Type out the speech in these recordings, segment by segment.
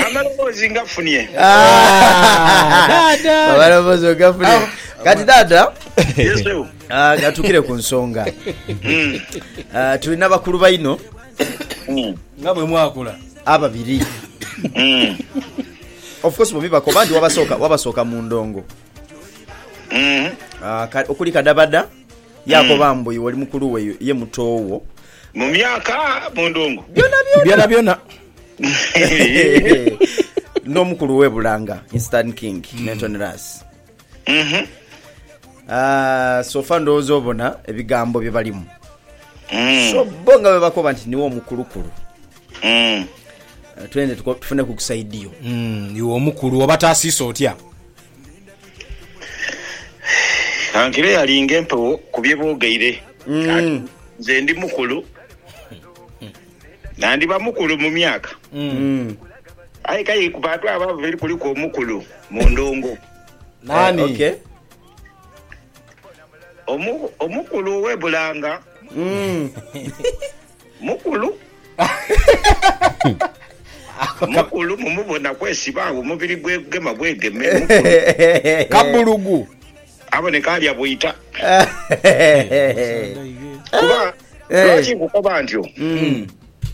Amaloboozi ngafunye. amaloboozi ogafune kati dada Yes, sir. ah, gatukire ku nsonga Mm. Ah, tulina bakulu baino Mm. nga bwe mwakula ababiri Mm. of course bombi bakoba nti wabasooka wabasooka mu ndongo Mm. Ah, ka- okuli kadabada Yaakoba mbu, Iwe oli mukulu we, ye muto wo. Mu myaka, mu ndhungu. Byonabyona. N'omukulu we bulanga, instant king, Nathan Ras. Sofa ndowooza obona ebigambo bye balimu. So bbo nga bwe bakoba nti niwe omukulukulu. Twende tufuneku ku saidi yo. Iwe omukulu, obataasiisa otya? Kankire yali nga empewo ku bye boogeire ati, Nze ndi mukulu, nandiba mukulu mu myaka, aye k'aye ku bantu abo ababiri kuliku omukulu mu ndongo. Naani? Omu, omukulu ow'e Bulanga. Mukulu. Mukulu mumubona kwesiba agho omubiri gwegema bwegeme mukulu. Kabulugu. Aboneka alya bwita. Kuba lwaki nkukoba ntyo?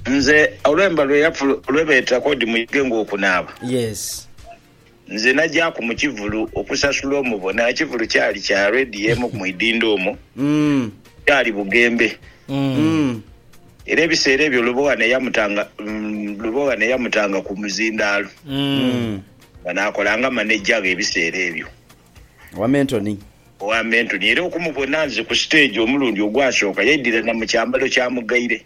Nze olwemba lweyafu lwebeeta kodi muyige nga okunaaba. Yes. Nze nagyaku mu kivulu okusasula omubona. Ekivulu kyali kya redi emu mu idhindho omwo. Kyali bughembe. Era ebiseera ebyo Lubogha ne yamutanga, Lubogha ne yamutanga ku muzindaalo nga naakolanga maneja ghe ebiseera ebyo. Owa Mentoni. Owa Mentoni. Era okumubona nze ku siteegi omulundi ogwasooka, yaidhira na mu kyambalo kya mugaire.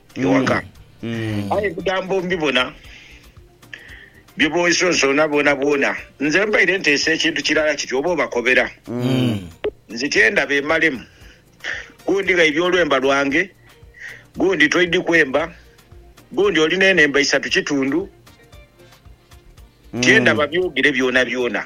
ewaka. Aye ebigambo mbibona bye bonsoonsoona bwonabwona. Nze mbaire nteesa ekintu kirala kiti oba obakobera, nzityenda beemalemu. Gundi ghaibye olwemba lwange, gundi toidhi kwemba, gundi oli n'enhemba isatu kitundu, tyenda babyogere byonabyona.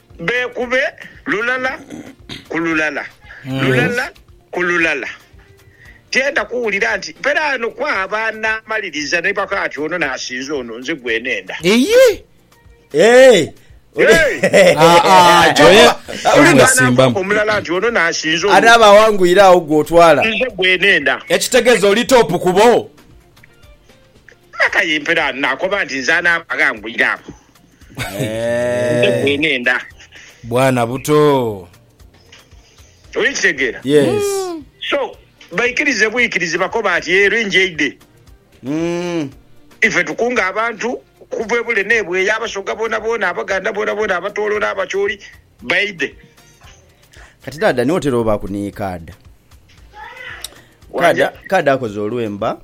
Beekube lulala ku lulala, lulala ku lulala. Tienda kuwulira nti peraano kwaba anaamaliriza ni baka ati ono n'asinza ono, nze gwenenda. Iyii. Eeh. Aa, Joe. Uli n'anaakoba omulala nti ono n'asinza ono. Anaaba awangwire agho gwe otwala. Nze gwenenda. Ekitegeza oli top kubo. Aye mperaano n'akoba nti nze anaaba aghangwire agho. Nze gwenenda. Bwana buto. Oli kitegera? Yes. So baikirize buikirizi bakoba ati yee lwenje eide. Ife tukunga abantu okuva ebule nebweya, abasoga bonabona, abaganda bonabona, abatoro n'abacholi baidhe. Kati dada niwe otera obaku ni kaada. Kaada kaada akoze olwemba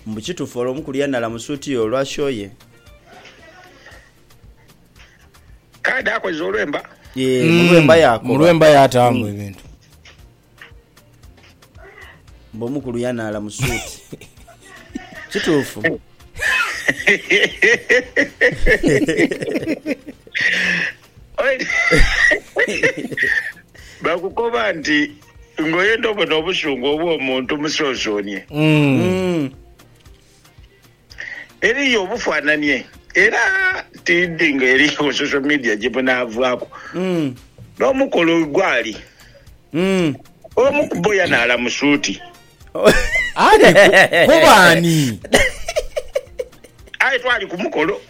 mbu kitufu ole omuku lyanala mu suit yo olwa show ye. Kaada akoze olwemba. Yee mulwemba yakoba. Mulwemba yatamu ebintu. Mbu omukulu yanaala mu suuti. Kituufu. Bakukoba nti ng'oyenda obone obusungu obw'omuntu musonsonie. Mm. Eriyo obufananie era tidhi nga eriyo social media gyebunaavaaku n'omukolo wegwali omu kubo yanaala mu suuti. Aye twali ku mukolo.